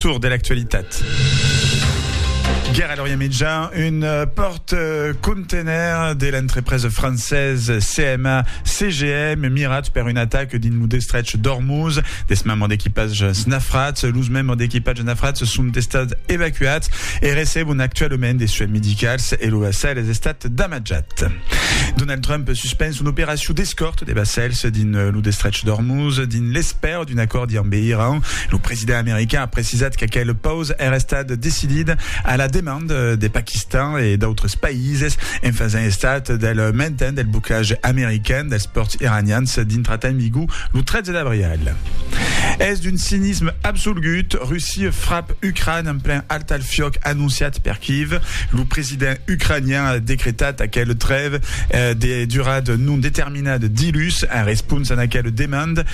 Tour de l'actualitat. Guèra a l'Orient Mitjà, un euh, pòrt euh, contener de l'entrepresa francesa CMA CGM mirat per un atac dins lo destrech d'Ormuz. Des membres d'equipatges nafrats, los membres d'equipatges nafrats son estats evacuats e recebon actualament de soins medicals e lo vassal es estat damatjat. Donald Trump suspens son operacion d'escòrt de vassals dins lo destrech d'Ormuz dins l'espèr L'absència d'un acòrdi ambe Iran, lo president american a precisat qu'aquel paus èra estat decidit a la demanda de Paquistan e d'autres païses en fasent estat del mainten del boclatge american dels pòrts iranians dintra tan migu lo 13 d'abrial. Es d'un cinisme absolgut, Russia frap Ucràn en plen altalfiòc anonciat per Kyiv. Lo president ucranian a decretat aquel trève de durada non determinada dilhus en responsa d'aquel demanda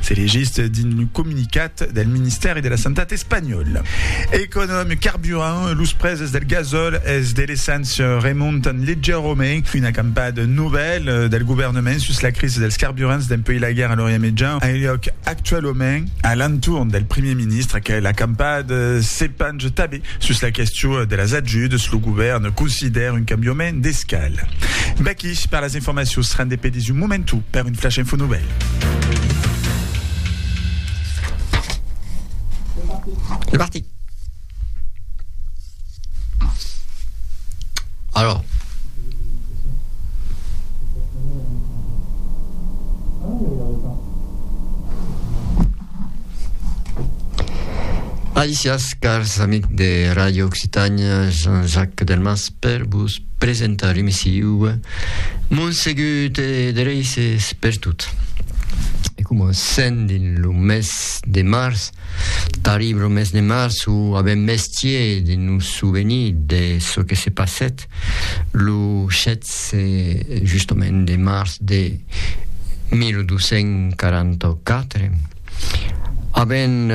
Se legís dins lo comunicat del Ministèri de la Santat espanhòl. Econòm, carburant, los prèses del gasòl e de l'esséncia remontan leugièrament. Una campada novèla del govèrnament sus la crisi dels carburants dempuèi la guèrra a l'Orient Mejan a luòc actualament a l'entorn del primièr ministre que la campada se pange tanben sus la question de las ajudas. Lo govèrn considèra un cambiament d'escala. Vèquí per las Informacions rende pedís un momentu per un flash info novèl. Alisiás cars amics de Ràdio Occitània, Jean-Jacques Delmas per vos Presentar l'emissiu Monsegut e Dereisses per tot. E comencem dins lo mes de març, tarib lo mes de març o a ben mestier de nos souvenir de çò que se passèt lo 16 justament de març de 1244. Avèm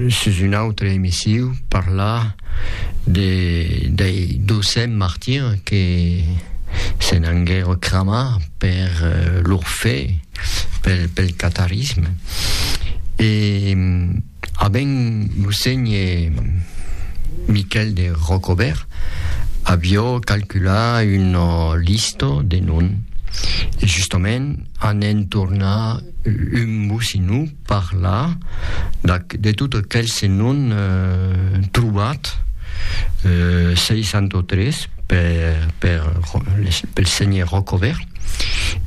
sus un autre emissiu parlar de dei docents martirs que se n'anguèro cramar per lor fe pel catarisme e A ben lo sénhe Miquèl de Rocobèrt avió calculat una lista de non, e justament an entornar un bocinu parlar d'ac de tot aquels non trobats, 63 per per les pel sénhe Rocobèrt.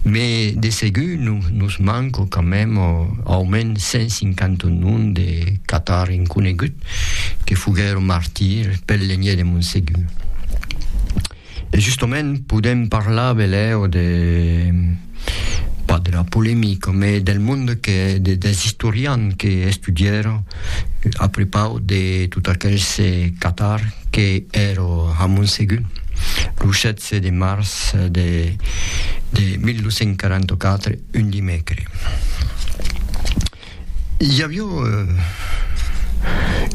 Me de segur nos manco quand même aument 150 noms de catar inconegut que foguèron martir pel lenhè de Montsegur. E justament podem parlar velèu de pas de la polemica, mais del monde que de, dels istorians que estudièron a prepau de tot aquels catars que èron a Montsegur. Lo Se de març de 1244, un dimècre, i avió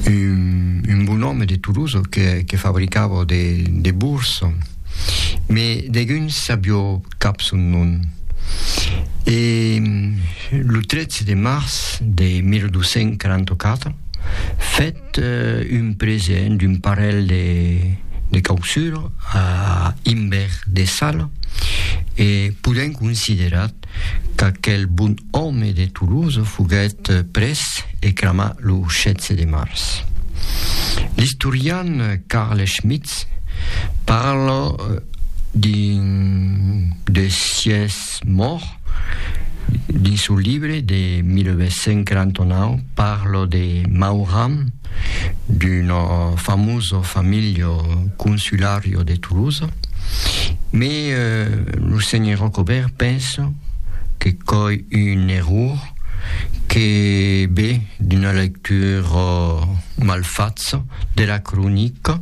un bon òme de Toulouse que fabricava de burs, mes deguns sabió cap son nom. E lo 13 de març de 1244, fèt, Fèt un present d'un parelh de causures a Imbert de Sala e podèm considerar qu'aquel bon òme de Toulouse foguèt prés e cramat lo 16 de març. L'istorian Carl Schmitz parla d'un de sies Ets mòrt? Dins son libre de 1949 parlo de Mauram, d'un famoso famiglio consulario de Tolosa, me lo senhor Rocobèrt penso que coi un error que be d'una lectura malfatza de la cronica